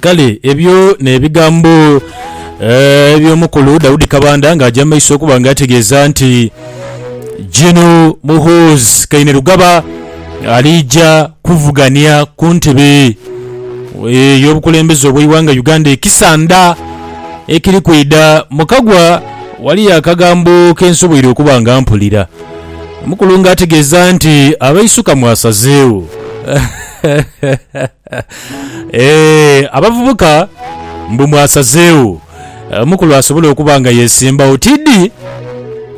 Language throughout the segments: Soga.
Kale ebyo n'ebigambo eh, eby'omukulu Daudi Kabanda ng'aja mu maiso okuba nga ategeeza nti Gino Muhoozi Kainerugaba aliija kuvugania ku ntebe ey'obukulembeze obw'eighanga Uganda ekisanda ekiri kwidha mu kagwa Waliyo akagambo ke nsoboire okuba nga mpulira. Mukulu nga ategeeza nti abaisuka mwasazeegho. Eeh, abavubuka mbu mwasazeegho. Mukulu asobola okuba nga yeesimbawo. Tidhi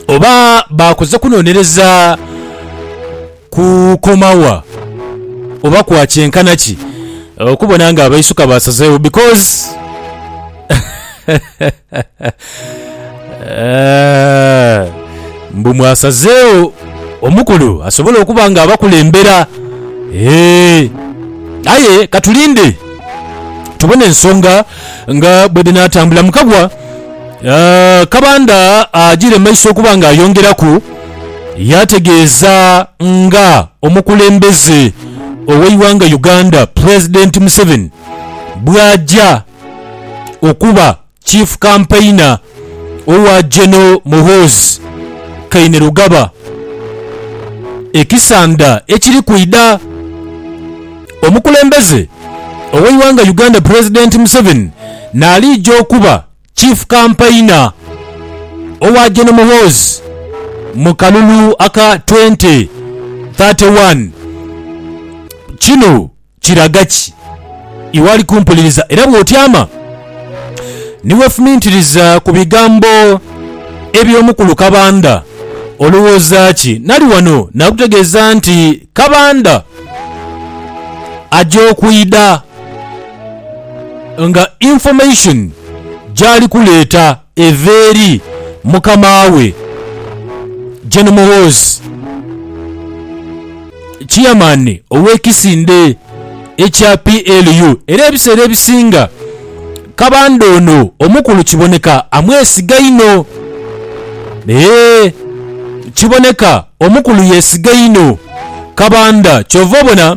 oba baakoze kunonereza. kukoma wa oba kwa kyenkana ki okubona nga abaisuka basazeewo because mbu mwasazeewo omukulu asobola okuba nga abakulembera eeh aye katulinde tubone ensonga nga bwedhinatambula mukagwa Kabanda ajiire mu maiso okuba nga ayongeraku Yategeeza nga omukulembeze ow'eighanga Uganda Pulezidenti Museveni bw'aja okuba Chief Campaigner owa Gen Muhoozi Kainerugaba e Kisanda ekiri kwidha. Omukulembeze ow'eighanga Uganda Pulezidenti Museveni n'aliija okuba Chief Kampaina owa Gen Muhoozi mu kalulu aka Twenty, Thirty One, Kino kiraga ki iwe ali kumpuliriza era bw'otyama ni weefumiitiriza ku bigambo eby'omukulu Kabanda olowooza ki? Nali wano naakutegeeza nti Kabanda aja okwidha. nga information gyali kuleeta eva eri mukama we Gen Muhoozi, chairman ow'ekisinde ekya PLU era ebiseera ebisinga Kabanda ono omukulu kiboneka amwesiga inho eeh kiboneka omukulu yesiga inho Kabanda kyova obona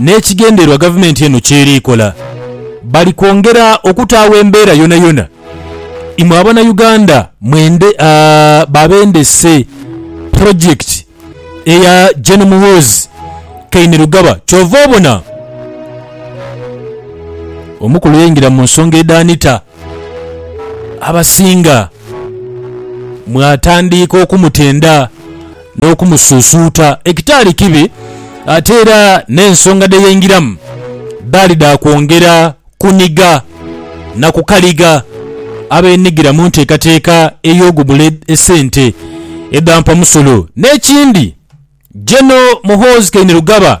N'ekigendererwa gavumenti eno ky'eri kola bali kwongera okutaagho embeera yonayona imwe Abanauganda mwende babendese pulojekiti eya Gen Muhoozi Kainerugaba ky'ova obona omukulu yaingira mu nsonga edhaanita abasinga mwatandiika okumutenda. N'okumusuusuuta ekitaali kibi ate era n'ensonga dhe yaingiramu dhaali dha kwongera kuniga na kukaliga abeenigira mu nteekateeka ey'ogubula esente edha mpamusolo. N'ekindi, Gen. Muhoozi Kainerugaba,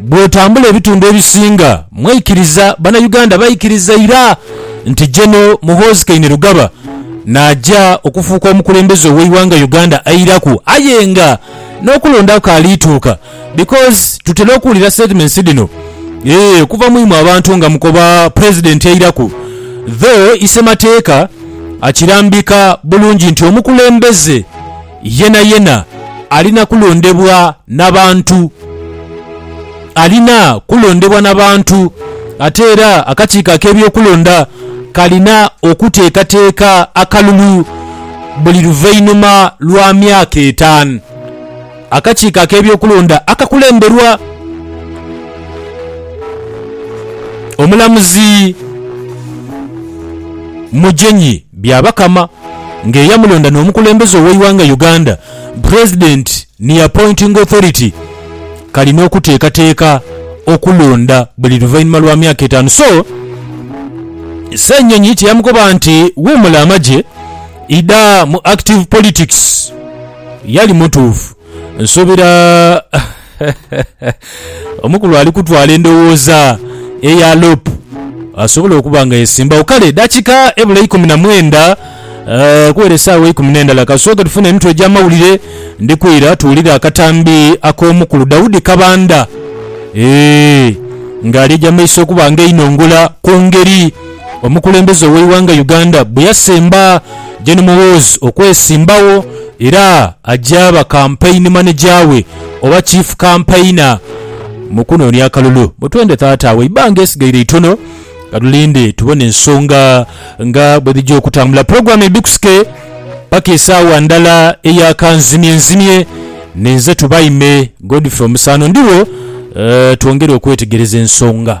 Bwotambula ebitundu ebisinga mweikiriza banauganda baikiriza ira nti Geno Muhoozi Kainerugaba naja okufuuka omukulembeze oweighanga Uganda eiraku aye nga nokulonda kukaali tuuka because tutera okuwulira statements dhino eeh okuva mwimwe abantu nga mukoba president eiraku though isemateeka akirambika bulungi nti omukulembeze Yenayena alina kulondebwa na bantu. Alina kulondebwa na bantu. Ate era akakiiko ak'ebyokulonda kalina okuteekateeka akalulu buli luvainhuma lwa myaka etaanu. Akakiiko ak'ebyokulonda akakulemberwa omulamuzi Mugyenyi. Byabakama nga eyamulonda n'omukulembeze ow'eighanga Uganda president ni appointing authority kalina okuteekateeka okulonda buli luvainhuma lwa myaka etaanu so Ssenyonyi tiyamukoba nti wuumula amagye idha mu active politics yali mutuufu nsuubira Omukulu ali kutwala endowooza eya loop asobole okuba nga yesimbawo. Kale dakika ebula ikumi na mwenda okuwera esaawa eikumi n'endala kasooke tufune emitwe egy'amawulire ndi kwira tuwulire akatambi ak'omukulu Daudi Kabanda eeh ng'alyeja maiso okuba nga einongola ku ngeri Omukulembeze ow'eighanga Uganda bwe yasemba Gen Muhoozi okwesimbagho era agyaba Kampeyini Maneja we oba Chief Kampeyina mu kunoonia akalulu. Mutwende Taata agho eibbanga esigaire itono katulinde tubone ensonga nga bwe dhija okutambula. Pulogulaamu ebikusike paka esaawa ndala eya kanzimyenzimye ninze Tubaime Godfrey Omusaano. Ndigho twongere okwetegereza ensonga.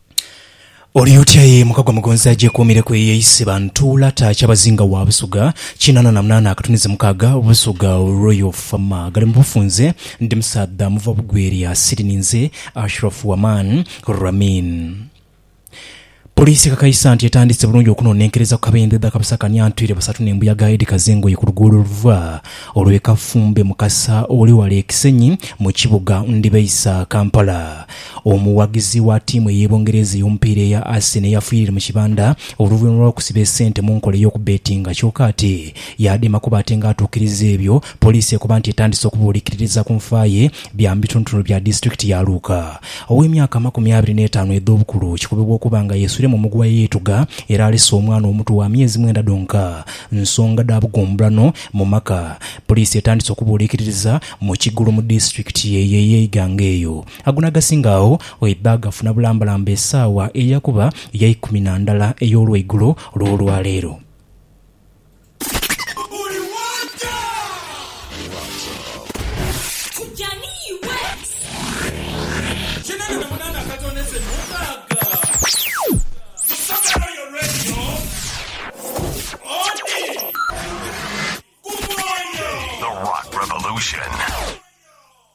Oli otya ye Mukagwa Mugonzi agyekuumireku eyo eisi ba Ntuula ta Kyabazinga wa Busuga kinaana na munaana akatuniza mukaaga Busuga Royal Fama gali mu bufunze Ndi musaadha muva bugwelya siri ninze Ashraf Waman Ramin Poliisi ekakaisa nti etandise bulungi okunonenkereza ku kabendhe dha kabusakania ntwire basatu n'embuyaga edhikaza engoye ku luguudo oluva olw'e Kafumbe Mukasa oli wala e Kisenyi mu kibuga Ndibaisa Kampala Omuwagizi wa tiimu ey'e Bungereza ey'omupiira eya Arsenal yafiire mu kibanda oluvanhuma lw'okusiba esente mu nkola ey'okubbetinga kyoka ate yaadema kuba ate nga atuukiriza ebyo poliisi ekoba nti etandise okubuulikiririza ku nfa ye. Bya mu bitundutundu bya disitulikiti ya Luuka. Ow'emyaka amakumi abiri n'etaanu edh'obukulu kikubibwa okuba nga yeesuire mu muguwa eyeetuga era alese omwana omuto wa myezi mwenda dhonka nsonga dha bugumbulano mu maka. Poliisi etandise okubuulikiririza mu Kigulu mu disitulikiti ye ye Iganga eyo. Ago n'agasinga agho oidha gafuna bulambalamba esaawa eya kuba ya ikumi na ndhala ey'olweigulo olw'olwaleero.